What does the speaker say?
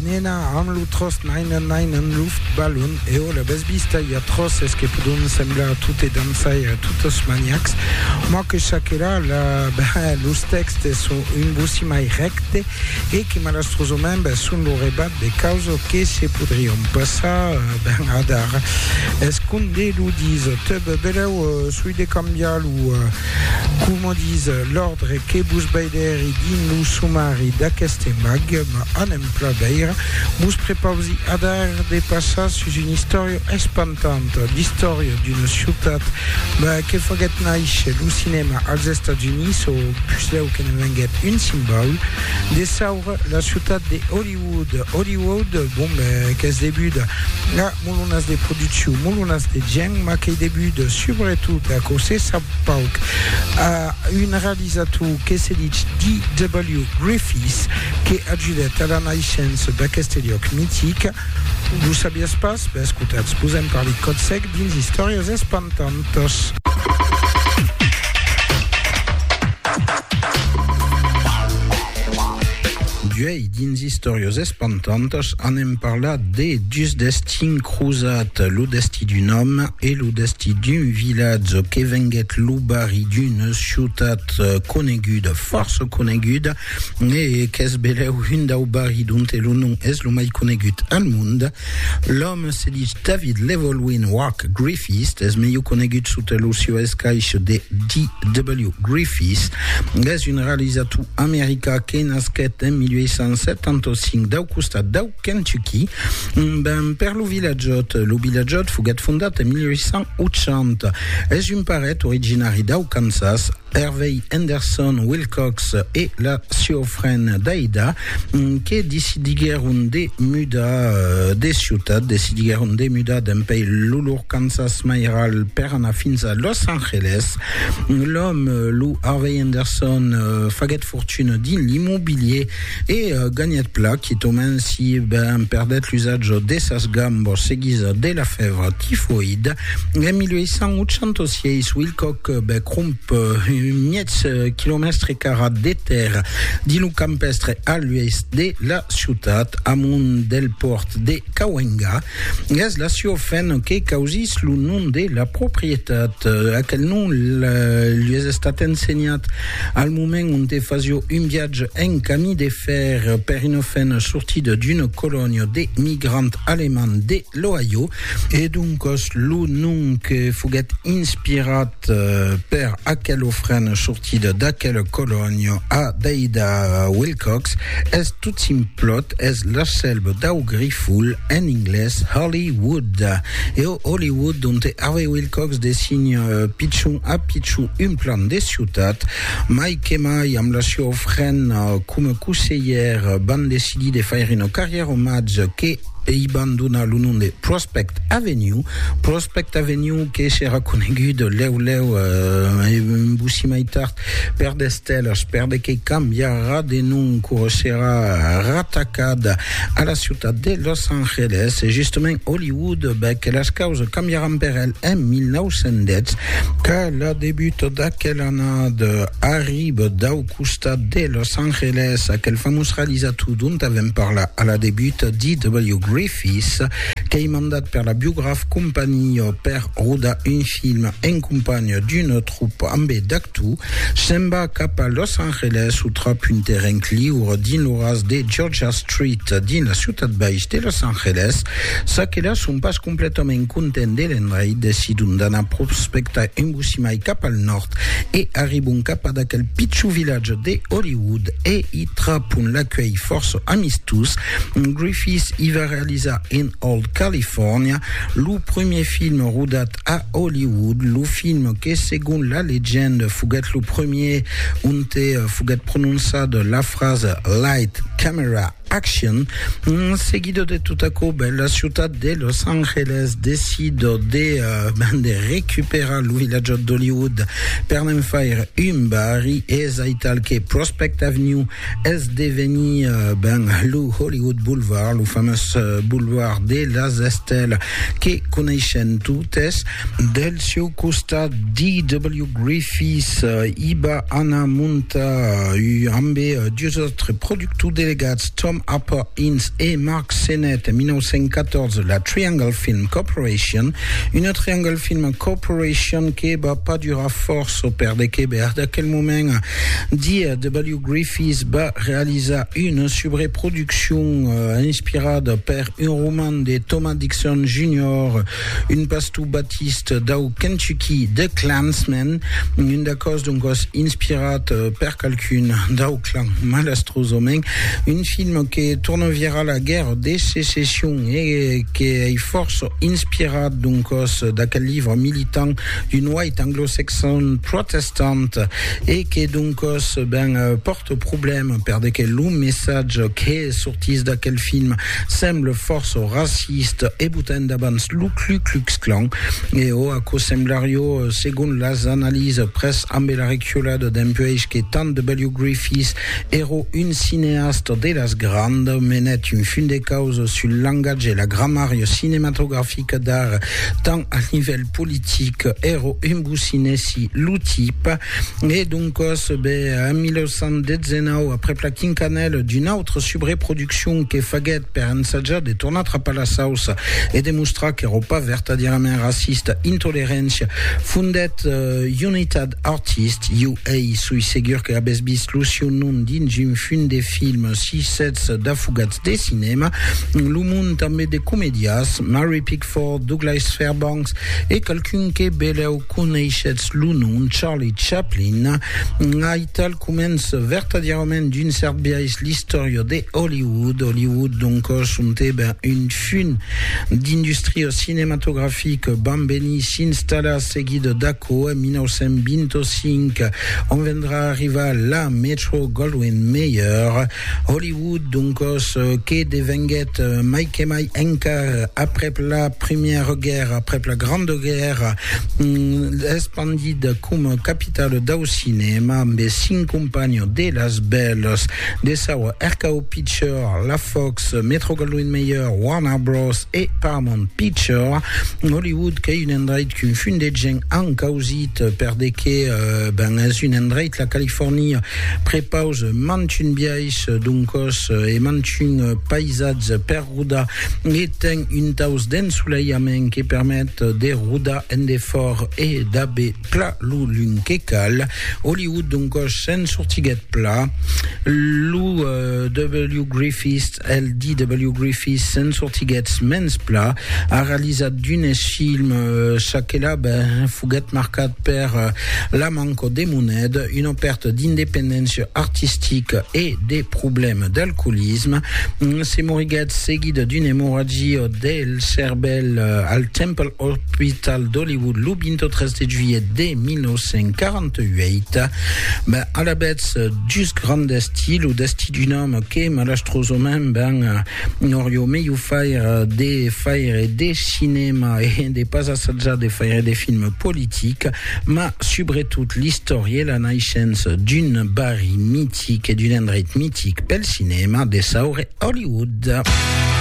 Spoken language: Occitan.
Nena amb lo tros naina naina en luft balon e o la bes vista i a tros es que podon semblar tot e dançar a totes maniacs moi que chaquera la los textes son un boci mai recte e que malastrosament ben son lo rebat de causa que se podrion passar ben adar es com de lo dis te bebeleu soi de cambiar lo Coma dis l'òrdre que vos veidèri dins lo somari d'aqueste mag, m'a un emplà veire, vos prepausi adar de passar sus una istòria espantanta, l'istòria d'una ciutat que faguèt nàisher lo cinèma als Estats Units o puslèu que ne venguèt un simbaul de saura, la ciutat de Hollywood. Hollywood, bon ben, qu'es debuda a. Molonas de produccion, molonas de gèn, mas qu'ei debut subretot aquò se sap pauc a un realizator que se ditz D.W. Griffiths que ajudèt a la naishença d'aqueste liòc mitic. Lo sabiás pas? Ben escotatz, vos en parli còth sec dins Istòrias espantantas. D'uèi dins Istòrias espantantas anem parlar de dus destins crosats, lo destí d'un òme e lo destí d'un vilatge que venguèt lo barri d'una ciutat coneguda, fòrça coneguda, e qu'es belèu un dau barri donte lo nom es lo mai conegut al mond. L'òme se dich David Llewelyn Wak Griffiths, es melhor conegut sota lo sieu escaich de D.W. Griffiths. Es un realizator americà que nasquèt en 1875 dau costat dau Kentucky, ben per lo Vilatjòt. Lo Vilatjòt foguèt fondat en 1880. Es un paret originari dau Kansas. Hervey Henderson Wilcox e la sieu frend Daida que decidiguèron de mudar de ciutat, decidiguèron de mudar dempuèi lo lor Kansas mairal per anar fins a Los Angeles. L'òme, lo Harvey Henderson, faguèt fortuna dins l'immobilier E ganhèt plan quitament si ben perdèt l'usatge de sas gambas seguisa de la fèvra tifoïda. En 1886, Wilcock bèc romp un miètz quilomèstre carat de tèrra dins lo campèstre a l'oèst de la ciutat, amunt del pòrt de Cahuenga. Gas la Ciofen que causís lo nom de la proprietat. Aquel nom lues estat ensenhat al moment onte fasio un viatge en camí de fer per una fen sortida d'una colònia de migrants alemands de l'Ohio e doncas lo nom que foguèt inspirat Per aquel ofren sortit d'aquel colòni a Deida Wilcox es tot simplot, es l'asselb dau grifol, en inglés Holly Wood. E o Holly Wood donte Harvey Wilcox design pichon a pichon un plan de ciutat, mai que mai amb la sua ofrena coma coselhèr van decidir de faire una carrièra omatge que Ei ban donar lo nom de Prospect Avenue, Prospect Avenue que serà conegut lèu lèu e vossi mai tard per The Stellars, per de que cambiarà de nom quò serà ratacat a la ciutat de Los Angeles, e justament Hollywood, bèth que las causas cambiaràn per el en 1910, qu'a la debut d'aquel annada arriba dau costat de Los Angeles, aquel famós realizator dont avèm parlat a la debut, D.W. Griffiths, qu'ei mandat per la Biograph Company per rodar un film en companha d'una tropa ambé d'actors, se'n va cap a Los Angeles o trap un terrenc liure dins lo ras de Georgia Street dins la ciutat baix de Los Angeles, çaquelas son pas Completament content de l'endreit, decidon d'anar prospectar un bocí mai cap al nòrd e arribon cap ad aquel pichon vilatge de Hollywood e i trapon l'acuelh fòrça amistós. Griffith i va realizar In Old California, lo premier film rodat a Hollywood, lo film que segon la legenda foguèt lo premier onte foguèt prononçada la frasa Light, Camera, Action. En seguida de tot aquò, ben, la ciutat de Los Angeles decida de, ben, de recuperar lo vilatjat d'Hollywood per ne'n faire un barri. Es aital que Prospect Avenue es devenir, ben, lo Hollywood Boulevard, lo famós boulevard de las estèlas que coneishen totes. Del sieu costat, D.W. Griffith i va anar montar, ambe dus autres productors, Tout delegats Tom Harper Ince e Mark Sennett en 1914 la Triangle Film Corporation, una Triangle Film Corporation que va pas durar fòrça perde que bèr d'aquel moment dia W. Griffith va realizar una subreproduccion inspirada per un roman de Thomas Dixon Junior Un pastor batist dau Kentucky, The Klansmen, un d'acòs doncòs inspirat per qualqu'un dau clan, malastrosament, un film que torna virar la Guèrra de Secession e que ei fòrça inspirat doncòs d'aquel livre militant d'un white anglo-saxon protestant e que doncòs ben pòrta problèma per de que lo messatge que sortís d'aquel film Semble fòrça raciste e botain davans lo Klu Klux Klan, e ò aquò semblarió, segon las analises, pres ambe la reculada dempuèish que tant de W. Griffith èro un cineasta de las grand, menèt un fin de causa sul langatge e la gramària cinematografica d'ar, tant al nivèl politic, èro un bocinèsi lo tip, e doncas, be, en 1919, aprèp la quincanèla d'un autre subreproductor, traduccion que faguèt per ensajar de tornar trapar la sauça e de mostrar qu'èra pas vertadierament racista, intolerància, fondèt United Artists, UA. Soi segur que avètz vist lo sieu nom dins un fum de film, si sètz d'afogats de cinèma, lo mond tanben de comedias, Mary Pickford, Douglas Fairbanks e qualqu'un que belèu. Coneishetz lo nom Charlie Chaplin? Aital comença vertadièrament d'un cèrt biais l'istòria de Hollywood. Hollywood, donc, sontèba un fum d'industria cinematografica, vam venir s'installar seguit d'aquò en 1925, ont vendrà arribar la Metro-Goldwyn-Mayer. Hollywood Doncòs, que devenguèt mai que mai encar aprèp la Primièra Guèrra, aprèp la Granda Guèrra, espandida coma capitala dau cinèma amb es cinc companhons de las bèlas de saua RKO Picture, la Fox, Metro-Goldwyn-Mayer, Warner Bros. E Paramount Picture. Hollywood qu'ei un endreit qu'un fum de gent an causit per de que ben es un endreit, la Califòrnia, prepaus mantun biais. País, doncòs, e manchun paisatge per rodar e ten un taus d'ensoleiament que permet de rodar en defòrt e d'aver pla lo lum que cal. Hollywood, doncòs, se'n sortiguèt pla. Lo W. Griffith, el DW Griffith, se'n sortiguèt mens pla. A realizat d'unes films, çaquelà, ben, foguèt marcat per la manca de moneda, una pèrta d'independéncia artistica e de problèmes d'alcoolisme. Se moriguèt seguida d'una emorragia del cervèl al Temple Hospital d'Hollywood lo 23 de juilhet de 1948. Alavetz, just grand destí, lo destí d'un òme que malastrosament ben Nòr jo me jo faire de faire de cinema e de pas assajar de faire de film politic, ma subretot l'istòria e la naishença d'un barri mitic e d'un endreit mitic pel cinema de saure Hollywood.